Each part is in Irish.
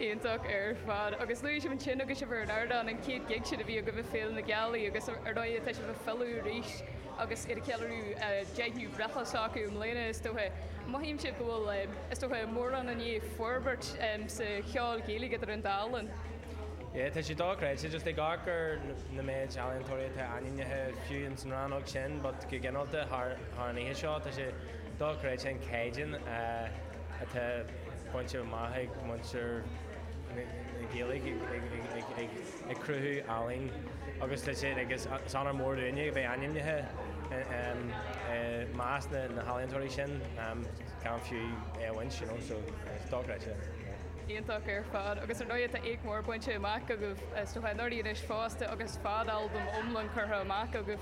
iontach ar fad agus luaigh sibh ansin agus sibh ar an ardán an chéad gig sin a bhí agaibh i Féile na Gealaí agus ar ndóigh tá sibh ag filleadh arís agus iad ag ceiliúradh 10ú breithlá s'acu i mbliana is dócha. An mothaíonn sibh go bhfuil, is dócha, mórán i ndiaidh forbairt sa cheol Ghaeilge idir an dá linn? Yeah, tá sé dochreidte, just ag amharc ar an méid ealaíontóirí atá ainmnithe, fiú ins an rannóg sin ach go ginearálta thar an oíche seo tá sé dochreidte an caighdeán. atá bainte amach ag muintir na Gaeilge ag cruthú ealaín agus tá sé agus is onóir mhór dúinne a bheith ainmnithe i measc na healaíontóirí sin gan fiú é a bhaint you know so it's dochreidte. Iontach ar fad agus ar ndóigh tá éacht mhór bainte amach agaibh ó shin dáiríre anois fosta agus fad albam iomlán curtha amach agaibh.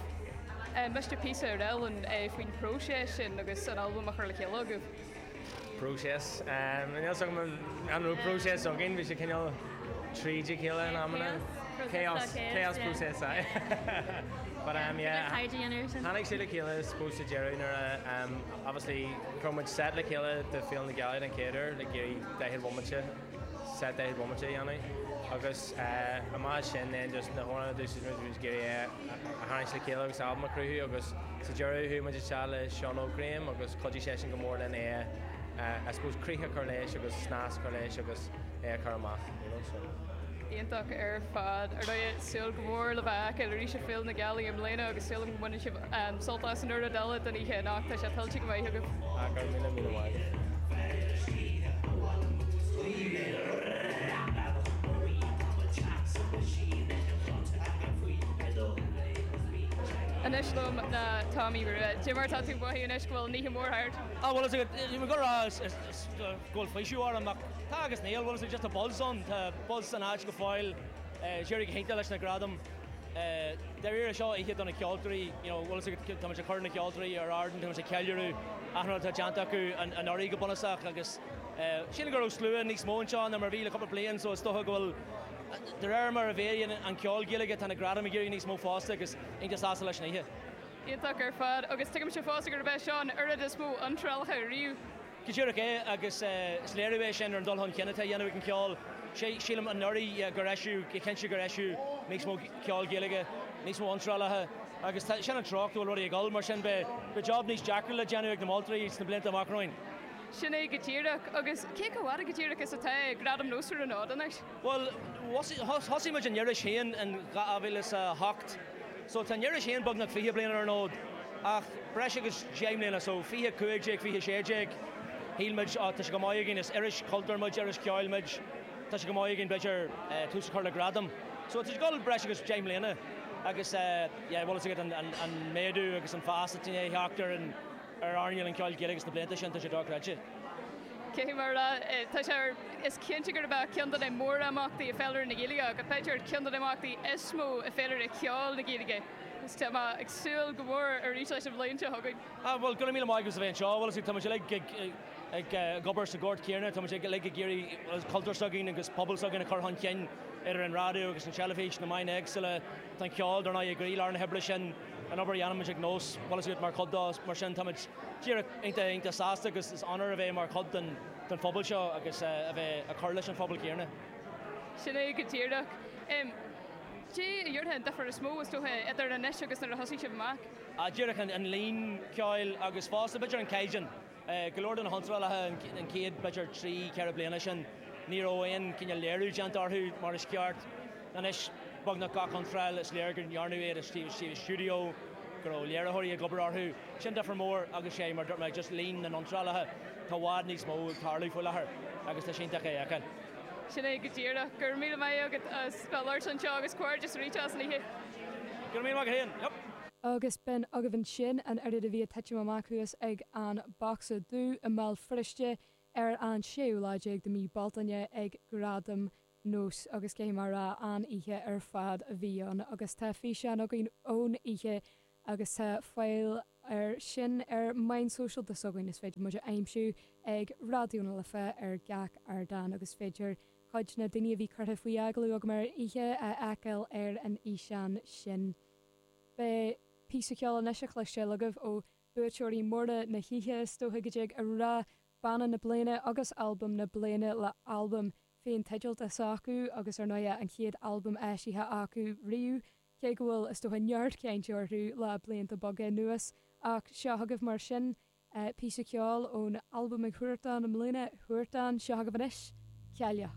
Inis píosa daoibh féin faoin phróiseas sin agus an albam á chur le chéile agaibh. próiseas. Níl s'agam an raibh próiseas againn, bhí sé cineál tríd a chéile in amanna. Chaos. Chaos process, aye. But um yeah, tháinig siad le chéile I suppose sa deireadh nuair a um obviously raibh muid set le chéile do Féile na Gealaí den chéad uair, like ag daichead bhomaite. set daichead bomaite a dhéanamh agus amach as sin then just na hamhráin a d'úsáid muid, muid ag iarraidh é a tharraingt le chéile agus albam a chruthú agus sa deireadh chuaigh muid isteach le Seán Óg Graham agus chuidigh seisean go mór linn é a I suppose críoch a chur leis agus snas a chur leis agus é a chur amach, you know, so. Iontach ar fad. Ar ndóigh, súil go mór libh a fheiceáil arís ag Féile na Gealaí i mbliana agus sílim go mbaineann sibh sult as an chuid eile den oíche anocht. Tá sé tuillte go maith agaibh. Go raibh míle míle maith. Anois liom tá Tomaí Rua. Cad é mar atá tú ag mothú anois go bhfuil an oíche mhór thart? Á bhuel bhfuil fhios agat sílim go raibh go bhfuil faoiseamh orm ach tá agus níl, bhfuil fhios agat just a buzz ann, tá buzz san áit go fóill. D'éirigh go hiontach leis na gradaim. Dáiríre seo oíche do na ceoltóirí, you know, bhfuil fhios agat, tá muid ag cur na ceoltóirí ar ardán, tá muid ag ceiliúradh achan rud atá déanta acu anuraidh go bunúsach agus sílim go raibh slua níos mó anseo ná mar a bhí le cúpla bliain so is dócha go bhfuil, de réir mar a mhéadaíonn an ceol Gaeilge tá na gradaim ag éirí níos mó fosta agus tá mé iontach sásta leis an oíche. Iontach ar fad agus tuigimse fosta gurb é seo an oiread is mó iontrálacha riamh. Go díreach é agus is léiriú é sin ar an dul chun cinn atá a dhéanamh ag an cheol. Sílim anuraidh gur eisíodh, go cinnte gur eisíodh níos mó ceol Gaeilge, níos mó iontrálacha agus tá, sin an treocht go bhfuil rudaí ag dul mar sin beidh job níos deacra le déanamh ag na moltóirí sna blianta amach romhainn. Sin é go díreach agus cé chomh fhada go díreach is atá Gradaim Nós ar an fhód anois? Bhuel thosaigh muid an iris féin in 2008. So tá an iris féin beagnach fiche bliain ar an fhód, ach breis agus deich mbliana, so fiche a cúig déag, fiche a sé déag, shíl muid á tá sé chomh maith againn, is iris chultúir muid, iris cheoil muid, tá sé chomh maith againn b'fhéidir tús a chur le gradam. So tá sé ag dul breis agus deich mbliana agus yeah bhfuil fhios agat an méadú agus an fás atá i ndiaidh a theacht ar an ar earnáil an cheoil Ghaeilge sna blianta sin, tá sé dochreidte. Cé hí mar atá? Tá sé ar, is cinnte gurb é ceann de na mórimeachtaí i féilire na Gaeilge, ach b'fhéidir ar cheann de na himeachtaí is mó i féilire cheoil na Gaeilge, agus tá mé ag súil go mór arís leis an bhliain seo chugainn. Ah, bhuel, go raibh míle maith agat as a bheith anseo. Bhuel, is é, táimid uilig ag, ag, ag obair sa ghort chéanna, táimid ag, uilig ag iarraidh an cultúr s'againn agus pobal s'againn a chur chun cinn idir an raidió agus an teilifís, na meáin éagsúla, tá an ceol, dar ndóigh, i gcroílár na hoibre sin. an obair a dhéanaimid ag Nós, bhfuil fhios agat, mar chuid dó, mar sin táimid díreach iontach, iontach sásta agus is onóir a bheith mar chuid den, den phobal seo agus a bheith ag cur leis an phobal céanna. Sin é go díreach. Caidé a déarfá an difear is mó, is dócha, idir anois agus nuair a thosaigh sibh amach? Díreach an, an líon, ceoil agus fosta b'fhéidir an caighdeán. Go leor de na hiontrálacha an chéad, b'fhéidir, trí, ceithre bliana sin, ní raibh aon cineál léiriú déanta orthu mar is ceart. Anois, beagnach gach iontráil, is léir go ndearnadh iad istigh i stiúideo, go raibh léiritheoirí ag obair orthu. Sin difear mór agus sé, mar a dúirt mé, just líon na n-iontrálacha, tá i bhfad níos mó ag tarlú faoi láthair agus tá sé iontach é a fheiceáil. Sin é go díreach. Go raibh míle maith agat as bheith labhairt anseo agus comhghairdeas arís as an oíche. Go raibh míle maith agat féin. Yep. Agus b'in agaibh ansin an oiread a bhí ag titim amach thuas ag an Bocsa Dubh i mBéal Feirste ar an séú lá déag de mhí Bealtaine ag Gradaim Nós agus caithfidh mé a rá an-oíche ar fad a bhí ann agus tá físeán againn ón oíche agus tá fáil air sin ar meáin sóisialta s'againn is féidir muid a aimsiú ag Raidió na Life ar gach ardán agus féidir cuid na daoine a bhí curtha faoi agallamh agam ar an oíche a fheiceáil ar an fhíseán sin. Beidh píosa ceoil anois á chloisteáil agaibh ó bhuaiteoirí móra na hoíche, is dóiche go dtig a rá Banna na Bliana agus Albam na Bliana le albam féinteidealta s'acu agus ar ndóighe an chéad albam eisithe acu riamh, cé go bhfuil, is dócha, neart cainte orthu le blianta beaga anuas. Ach seo agaibh mar sin píosa ceoil ón albam ag Huartan i mbliana, Huartan, seo agaibh anois, Cailleach.